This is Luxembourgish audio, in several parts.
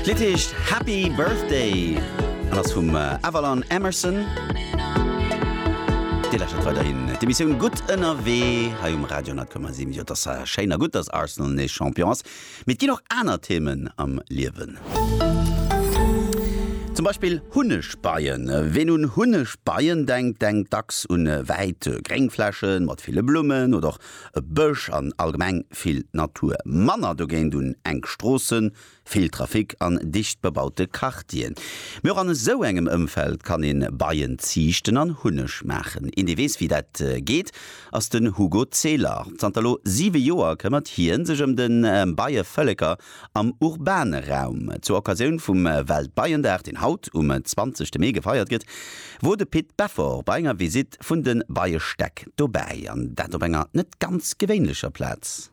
D'Lidd heescht Happy Birthday an ass vum Avalon Emerson. Dir lauschtert weiderhin d'Emissioun Gutt ënnerwee hei um Radio 10,7. Jo, et ass schéin a gutt, datt Arsenal nees Champion ass, mee et ginn och aner Themen am Liewen. Zum Beispill Hunnegbeien. Ween un Hunnegbeien denkt, denkt dacks un wäit gréng Fläche mat ville Blummen oder och e Bësch an allgemeng vill Natur. Manner dogéint un enk Stroossen, Vill Trafic an dicht bebaute Quartieren, mee och an esou engem Ëmfeld kann ee Beien ziichten an Hunneg maachen. Een dee weess wéi dat geet ass den Hugo Zehler. Zanter elo 7 Joer këmmert hien sech ëm de Beievëlleker am urbane Raum. Zur Occasioun vum Weltbeiendag, deen haut um 20 Mee gefeiert gëtt, wor de Pit Beffort bei enger Visitt vun de Beiestäck dobäi, an dat op enger net ganz gewéinlecher Plaz.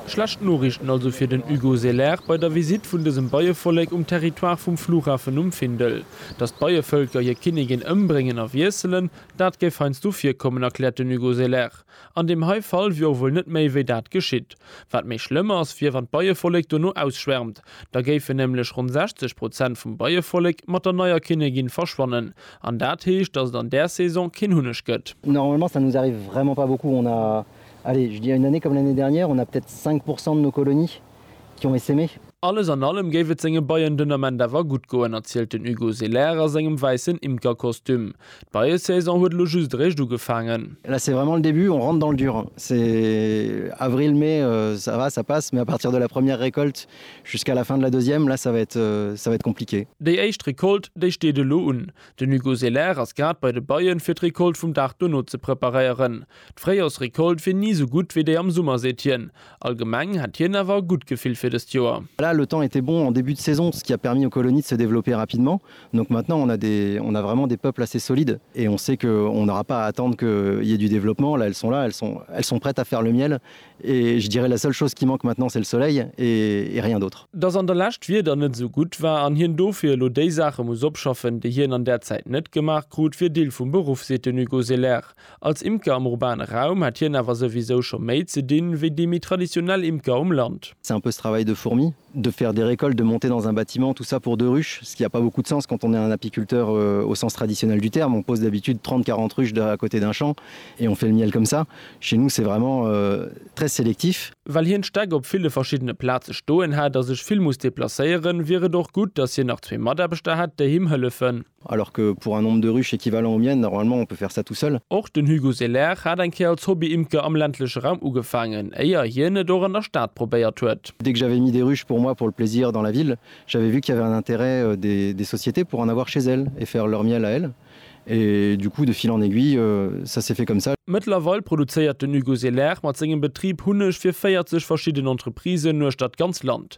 Schlecht Noriichten also fir den Hugo Selaert bei der Visitt vun dësem Beievollek um Territoire vum Flughafen um Findel. Datt d'Beievëlker hir Kinnigin ëmbréngen a wiesselen, dat géif heiansdo virkommen, erkläert den Hugo Selaert. An deem hei Fall wier och wuel net méi wéi dat geschitt. Wat méi schlëmm ass, wier wann d'Beievollek dono ausschwärmt. Da géifen nämlech ronn 60 Prozent vum Beievollek mat der neier Kinnegin verschwannen. An dat heescht, dass et an där Saison keen Hunneg gëtt. Normalement ça nous arrive vraiment pas beaucoup, on a, allez je dirais une année comme l'année dernière, on a peut-être 5 pourcent de nos colonies. Yo me simi. Alles an allem géif et senge Beien den Ament awer gutt goen, erzielt den Hugo Selaire a sengem wäissen Imkerkostüm. D'Beiesaison huet elo just eréischt ugefaangen. Là c'est vraiment le début, on rentre dans le dur. C'est avril, mai, ça va, ça passe, mais à partir de la première récolte jusqu'à la fin de la deuxième, là ça va être, ça va être compliqué. Déi éischt Recolte, déi steet elo un. Den Hugo Selaire ass grad bei de Beien, fir d'Recolte vum Dag dono ze preparéieren. D'Fréijorsrecolte wier ni esou gutt wéi déi am Summer, seet hien. Allgemeng hätt hien awer e gutt Gefill fir dëst Joer. Voilà, le temps était bon en début de saison, ce qui a permis aux colonies de se développer rapidement. Donc maintenant on a des, on a vraiment des peuples assez solides et on sait que on n'aura pas à attendre qu'il y ait du développement. Là, elles sont là, elles sont, elles sont prêtes à faire le miel et je dirais la seule chose qui manque maintenant c'est le soleil et, et rien d'autre. Dass an der Lescht d'Wieder net esou gutt war an hien dofir elo déi Saache muss opschaffen, déi hien an där Zäit net gemaach krut, wier Deel vum Beruff, seet den Hugo Selaire. Als Imker am urbane Raum hätt hien awer souwisou scho méi ze dinn, wéi déi méi traditionell Imker um Land. C'est un peu ce travail de fourmi, de faire des récoltes, de monter dans un bâtiment, tout ça pour deux ruches, ce qui a pas beaucoup de sens quand on est un apiculteur au sens traditionnel du terme, on pose d'habitude 30-40 ruches à côté d'un champ et on fait le miel comme ça. Chez nous c'est vraiment très sélectif. Well hien d'Stäck op ville verschiddene Plaze stoen hätt a sech vill muss deplacéieren, wier et och gutt, datt hien nach zwee Mataarbechter hätt, déi him hëllefen. Alors que pour un nombre de ruches équivalent au mien, normalement on peut faire ça tout seul. Och den Hugo Selaire hat eng Kéier als Hobby-Imker am ländleche Raum ugefaangen, éier hien et och an der Stad probéiert huet. Dès que j'avais mis des ruches pour moi pour le plaisir dans la ville, j'avais vu qu'il y avait un intérêt des sociétés pour en avoir chez elles et faire leur miel à elles. Et du coup, de fil en aiguille, ça s'est fait comme ça. Mëttlerweil produzéiert den Hugo Selaire mat sengem Betrib Hunneg fir 40 verschidden Entreprisen uechter d'ganz Land.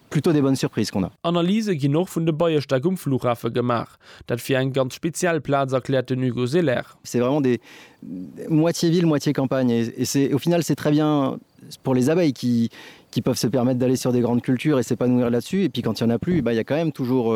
Plutôt des bonnes surprises qu'on a. Analyse ginn och vun de Beierstäck um Flughafe gemaach. Dat wier eng ganz speziell Plaz, erkläert den Hugo Selaire. C'est vraiment des moitié ville, moitié campagne et et c'est au final c'est très bien pour les abeilles qui qui peuvent se permettre d'aller sur des grandes cultures et s'épanouir là-dessus et puis quand il y en a plus, eh ben il y a quand même toujours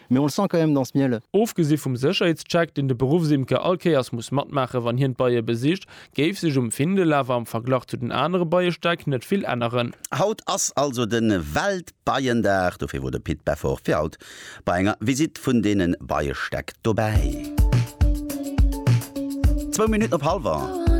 Mais on le sent quand même dans ce miel. Ofgesi vum Sécherheetscheck, deen de Beruffsimker all Kéiers muss matmaache wann hien d'Beie besicht, géif sech um Findel awer am Verglach zu den anere Beiestäck net vill änneren. Haut ass also de Weltbeiendag, dofir wor de Pit Beffort fir haut bei enger Visite vun deene Beiestäck dobäi. Zwou Minutten op halwer.